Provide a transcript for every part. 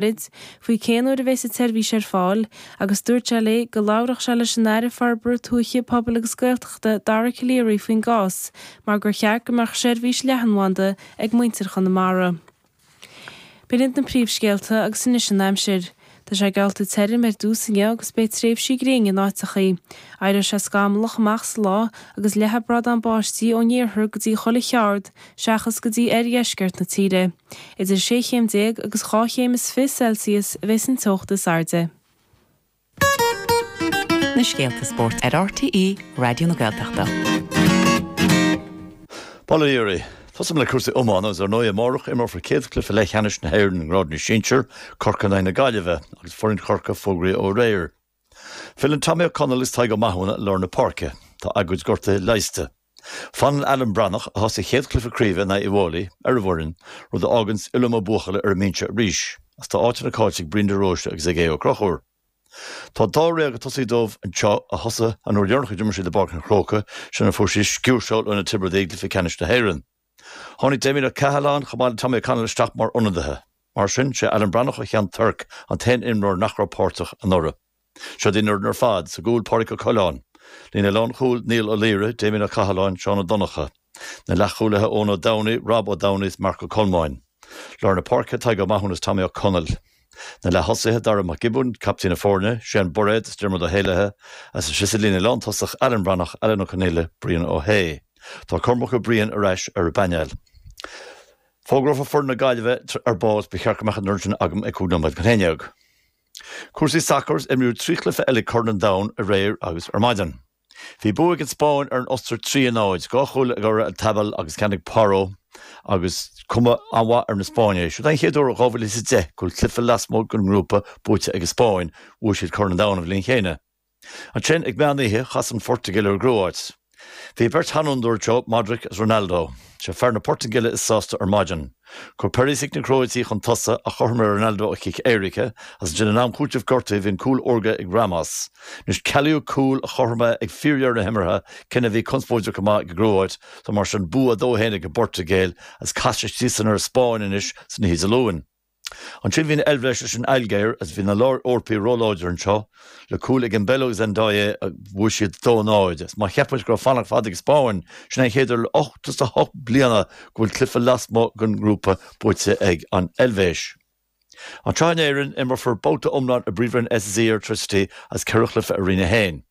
Bríd, faoi cén uair a bhéas an tseirbhís ar fáil agus dúirt sé léi go labharfadh sé leis an Aire Forbartha Tuaithe, Pobail agus Gaeltachta, Dara Calleary faoin gcás mar gur cheart go mbeadh seirbhís leathanbhanda ag muintir Chonamara. B'in iad na príomhscéalta agus anois an aimsir. Tá sé geallta tirim ar dtús inniu agus beidh tréimhsí gréine in áiteachaí. Éireoidh sé scamallach amach sa lá agus leathfaidh brádán báistí ón iarthar go dtí chuile cheard seachas go dtí oirdheisceart na tíre. Idir sé chéim déag agus dhá chéim is fiche Celsius a bheas an teocht is airde. na scéalta spóirt ar RTÉ Raidió na Gaeltachta. Bail ó Dhia oraibh. Tosóidh mé le cúrsaí iomána agus ar ndóigh amárach imreofar céad chluiche leathcheannais na hÉireann i ngrád na sinsear, Corcaigh in aghaidh na Gaillimhe agus foireann Chorcaí fógraithe ó aréir. Filleann Tommy Ó Conaill is Tadhg Ó Mathúna lár na páirce. Tá a gcuid gortuithe leigheasta. Fanann Alan Breathnach, a thosaigh a chéad chluiche craoibhe in aghaidh Uíbh Fhailí, ar an bhfoireann, rud a fháganns Uilleam Ó Buachalla ar an mbinse arís, agus tá áiteanna cáillte ag Brian de Róiste agus ag Aodh Ó Conchúir. Tá dáréag ag tosaí dóibh anseo a thosaigh an uair dheireanach a d'imir siad i bPáirc an Chrócaigh, sin ó fuair siad sciúrseáil ó na Tiobradaigh i gcluiche ceannais na hÉireann. Tháinig Damien Ó Cathaláin, chomh maith le Tommy Ó Conaill isteach mar ionadaithe. Mar sin, sé Alan Breathnach ó Cheann Toirc an t-aon imreoir nach raibh páirteach anuraidh. Seod í an fhoireann ar fad, sa gcúl Pádraig Ó Coileáin, líne lán-chúil Niall Ó Laoire, Damien Ó Cathaláin, Seán Ó Donnchadha, na leath-chúlaithe Eoin Ó Domhnaigh, Rob Ó Domhnaigh is Marc Ó Colmáin, lár na páirce Tadhg Ó Mathúna is Tommy Ó Conaill. Na leath-thosaithe Dara Mac Giobúin, Captaen na Foirne, Séan Bairéad is Diarmuid Ó hÉalaithe, agus ansin sa líne lántosaigh Alan Breathnach, Alan Ó Conaola, Brian Ó hAodha. Tá Cormac Ó Briain ar ais ar an bpainéal. Fógrófar foireann na Gaillimhe ar ball is ba cheart go mbeadh an fhoireann sin agam ag cúig nóiméad chun a haon déag. Cúrsaí sacair is imríodh trí chluiche eile Corn an Domhain aréir agus ar maidin. Bhí bua ag an Spáinn ar an Ostair 3-0, dhá chúl ag Oyarzabal agus ceann ag Porro agus cuma an-mhaith ar na Spáinnigh. Is é an chéad uair ó 2010 go bhfuil cluiche lasmuigh den ngrúpa buaite ag an Spáinn, bhuaigh siad Corn an Domhain an bhliain chéanna. Ansin ag meán oíche chas an Phortaingéil ar an gCróit. Bhí beirt sheanfhondúir anseo, Modric is Ronaldo. Sé fear na Portaingéile is sásta ar maidin. Chuir Perisic na Crótaigh chun tosaigh ach chothromaigh Ronaldo ó chic éirice is ansin in am cúitimh gortuithe bhí an cúl órga ag Ramos. Anois cealaíodh cúl an chothromaithe ag fíordheireadh na himeartha cinneadh a bhí conspóideach go maith ag an gCróit so mar sin bua 2-1 ag an bPortaingéil agus casfaidh siadsan ar an Spáinn anois san oíche Dé Luain. Ansin bhí an Eilbhéis leis an Ailgéir agus bhí na lár-Eorpaigh ró-láidir anseo, le cúl ag Embolo is Ndoye agus bhuaigh siad 2-0. Má cheapann tú go raibh fanacht fada ag an Spáinn, sin é an chéad uair le 88 bliana go bhfuil cluiche lasmuigh den ngrúpa buaite ag an Eilvéis. An tSraith in Éirinn, imreofar babhta iomlán i bPríomhroinn SSE Airtricity is ceithre chluiche i Roinn 1.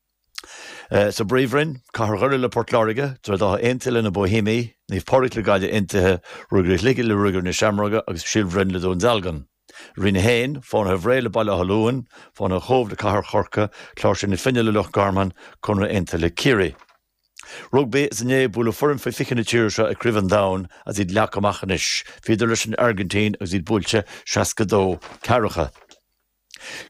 Sa bPríomhroinn, Cathair Dhoire le Port Láirge, Droichead Átha Aontaithe leis na Bohemians, Naomh Pádraig le Gaillimh Aontaithe, Ruagairí Shligigh le Ruagairí na Seamróga agus Síol Bhroin le Dún Dealgan. Roinn 1, Fánaithe Bhré le Baile Átha Luain, Fánaithe Chóibh le Cathair Chorcaí, Cláirsigh na Finne le Loch Garman, Conradh Aontaithe le Ciarraí. Rugbaí is inné bualadh foireann faoi 20 na tíre seo i gCraobh an Domhain agus iad leagtha amach anois. Bhíodar leis an Airgintín agus iad buailte 62 ceathracha.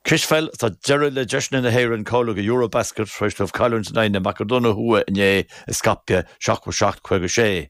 Cispheil, Tá deireadh le deiseanna na hÉireann cáiliú do Eurobasket tar éis dóibh cailliúint in aghaidh na Macadóine Thuaidh inné i Skopje, 77, 56.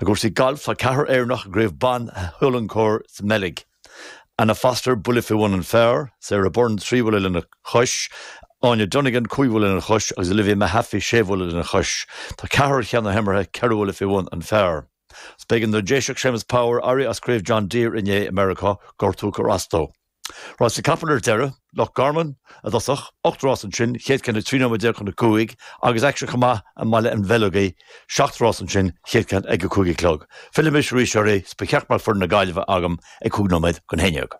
I gcúrsaí gailf tá ceathrar Éireannach i gCraobh Ban Hulencourt sa mBeilg. Anna Foster, buille faoi bhun an phar, Sara Byrne, trí bhuille lena chois, Áine Donegan, cúig bhuille lena chois, agus Olivia Mehaffey, sé bhuille lena chois. Tá ceathrar ar cheann na himeartha ceithre bhuille faoi bhun an phar. B'éigean don Déiseach Séamus Power éirí as Craobh John Deere inné i Meiriceá, gortú a chuir as dó. Rásaí capall ar deireadh, Loch Garman, i dtosach, ocht rás ansin, chéad ceann ag trí nóiméad déag chun a cúig, agus aicsean chomh maith i mBaile an Bheileogaigh, seacht rás ansin, chéad ceann ag a cúig a chlog. Fillfidh mise arís oraibh, 's ba cheart go mbeadh foireann na Gaillimhe agam ag cúig nóiméad chun a haon déag.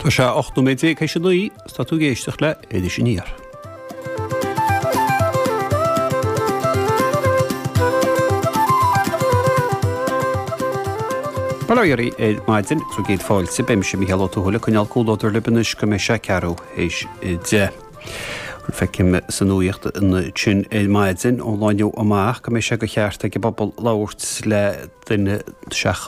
Tá sé ocht nóiméad déag théis a naoi, 's tá tú ag éisteacht le hIris Aniar. Bail ó Dhia oraibh ar maidin, is céad fáilte, beidh mise Mícheál Ó Tuathail ag coinneáil comhluadar libh anois go mbeidh sé ceathrú théis a deich. Feicim sa nuaíocht ansin ar maidin, ón lá inniu amach, go mbeidh sé de cheart ag an bpobal labhairt le duine seachas.